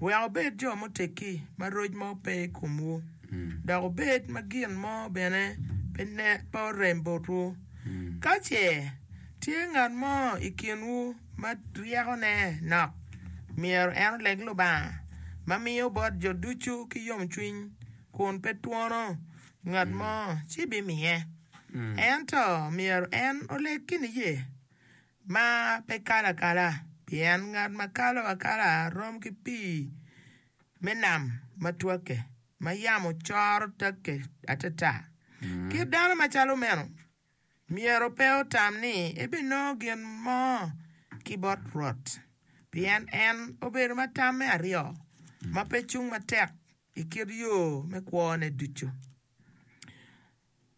wek wubed jo muteggi ma roc mo pe i komwu, dok wubed ma gin mo bene pe orem botwu. Ka ce tye ngat mo i kinwu ma ryekone nok, myero en oleg Lubanga, ma miyo bot jo ducu ki yomcwiny kun pe twono ngat mo, ci bimiye. Ento myero en oleg ki niye, ma pe kalo akala, pien ngat ma kalo akala rom ki pii me nam ma twakke, ma yamo coro takke atata. Kit dano macalo meno myero pe otam ni ebinongo gin mo ki bot Rwot, pien en obedo ma tam me aryo, ma pe cung matek i kit yo me kwone ducu.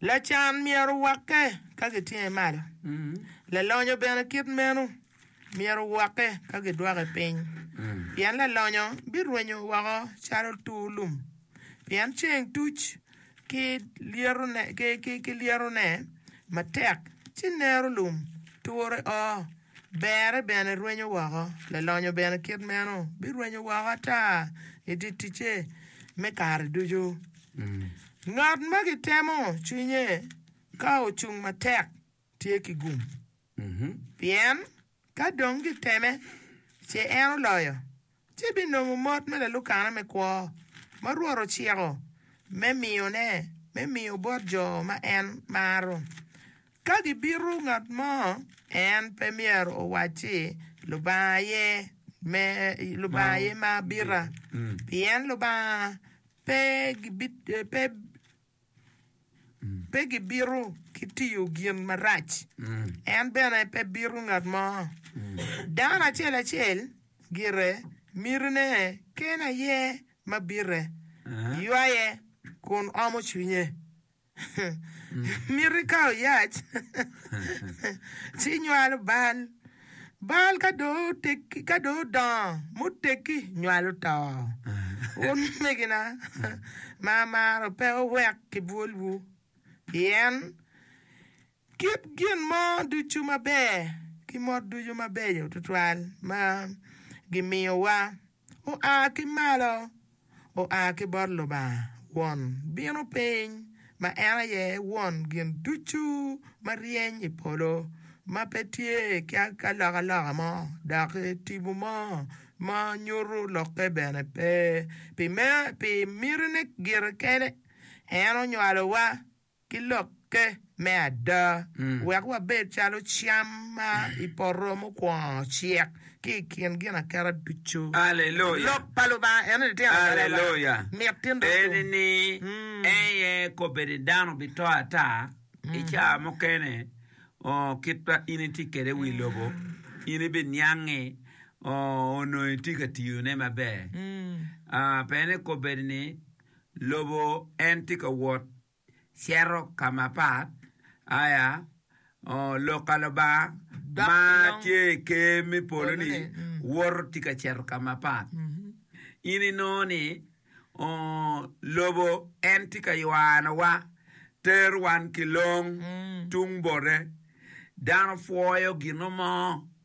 Lacan myero owakke ka gitinge malo, lalonyo bene kit meno myero owakke ka gidwoke piny, pien lalonyo birwenyo woko calo tur lum, pien ceng tuc ki lyetone matek, ci nero lum ture o, berre bene rwenyo woko, lalonyo bene kit meno birwenyo woko ata i dye ticce me kare ducu. Ngat ma gitemo cwinye ka ocung matek tye ki gum, pien ka dong giteme ce en oloyo, ci binongo mot me lalukana me kwo ma Rwot ociko me miyone me miyo bot jo ma en maro. Ka gibito ngat mo, en pe myero owacci, 'Lubanga aye ma abita, pien Lubanga pe gibito ki tiyo gin marac, en bene pe bito ngat mo. Dano acel acel gire mitine kene aye ma bite, ywaye, kun omo cwinye. Mito ikawo yac ci inywalo bal. Bal ka dong otegi ka dong odongo muteggi nywalo to. Wun omegina ma amaro pe wuwek kibwolwu, pien kit gin mo ducu maber ki mot ducu mabeco tutwal ma gimiyowa. oa ki malo, oa ki bot Lubanga Won, bino piny, ma en aye Won gin ducu ma ryeny i polo, ma pe tye ki alokaloka mo, dok tipo mo ma nyuto lokke bene pe. Pi mitine gire kene, en onywalowa. ki lokke me ada, wek wabed calo cam ma i poto mukwongo ocek ki i kin ginaketa ducu. Lok pa Lubanga en ni tyen adada Lubanga mit ti nduddu. Eni ni en aye kobbe ni dano bito ata i caa mukene kit ma in itye kwede i wi lobo, in ibiniange onongo itye ka tiyone maber. Pe ni kobbe ni. lobo en tye ka wot cito ka mapat, aya lok ka Lubanga ma tye i Ker me polo-ni woto tye ka cito ka mapat. In inongo ni lobo en tye ka ywanowa, tero wan ki long tung bote. Dano pwoyo gino mo.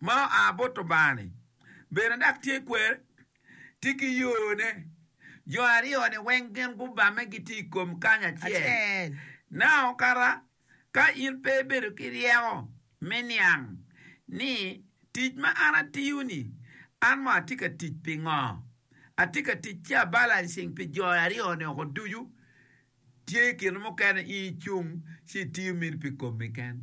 ma oa bot Lubanga-ni bene dok tye kwer, tye ki yone. Jo aryo-ni weng gin gubamme gitye i kom kany acel. Nao kara ka in pe ibedo ki ryeko me niang ni tic ma an atiyo-ni, an mo atye ka tic pi ngo? Atye ka tic ci abalancing pi jo aryo-ni oko ducu? Tye kine mukene in icung ci itiyo mini pi komi ken.